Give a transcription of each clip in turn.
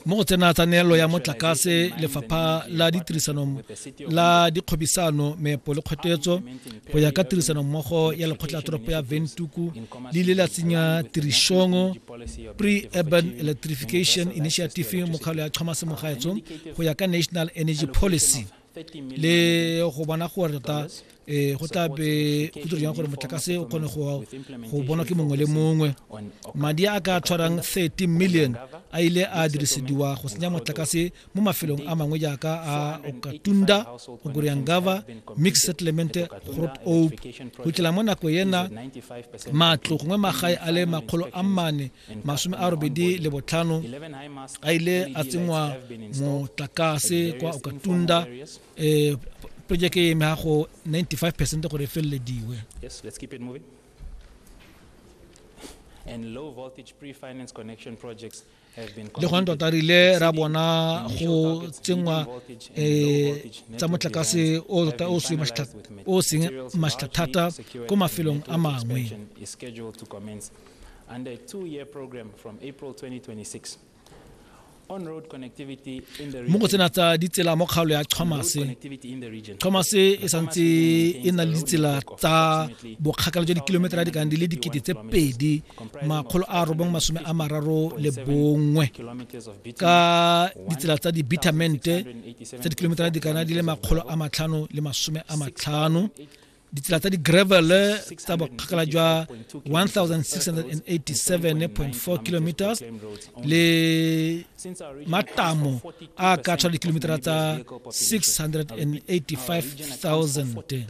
mo go tsena tsa neelo ya motlakase lefapha la ditirisano la dikgwebisano meepo le kgwetetso go ya ka tirisanommogo ya lekgotla toropo ya ventuku le ile la tsenya tirišong pre-urban electrification initiative mokgalo ya tlhomasemogaetso go ya ka national energy policy le go bona gore tota um go tla be go dira jang gore motlakase o kgone go bonwa ke mongwe le mongwe madi a ka tshwarang 30 million a ile a dirisediwa go senya motlakase mo mafelong a mangwe jaaka a okatunda ogoriangava mix settlement grot ope go tlela mo nako ena matlo gongwe magae a le makgolo a mane masome a robedi le botlhano a ile a tsenngwa motlakase kwa okatunda um project e eme gago 95 percent gore e felelediwe le gone tota re ile ra bona go tsenngwa um tsa motlakase o tota o seng maštlha thata ko mafelong a mangwe and a two-year program from April 2026. On-road connectivity in the region. Mo go tsena tsa ditsela mo kgaolo ya Chomase. Chomase e santse e na le ditsela tsa bokgakala jwa dikilometara di ka di le dikete tse pedi makgolo a robong masome a mararo le bongwe ka ditsela tsa di-bitamente tsa dikilometara di kana di le makgolo a matlhano le masome a matlhano ditsela tsa di-gravel tsa bokgakala jwa 1687.4 km le matamo a ka tshwara dikilometera tsa 685,000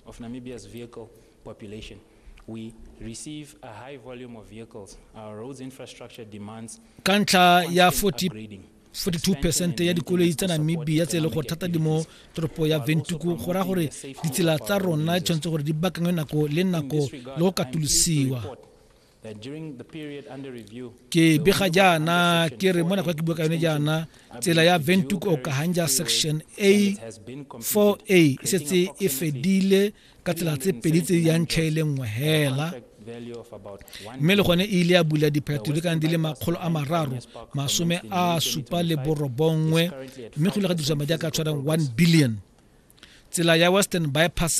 of Namibia's vehicle population. we receive a high volume of vehicles. Our roads infrastructure demands ka ntlha ya 40 42 percent ya dikoloi tsa namibia tse e le gore thata di mo toropo ya ventuku go raya gore ditsela tsa rona tshwanetse gore di bakangwe nako le nako le go katolosiwa ke bega jaana ke re mo nako ya ke bua ka yone jaana tsela ya ventuku okahanja section a 4a e setse e fedile ka tsela tse pedi tse di yang tlhe e le nngwe hela mme le gone e ile ya bula diphetho di kana di le makgolo a mararo masome a supa le borobongwe mme go ile ga dirisa madi a ka tshwarang one billion tsela ya western bypass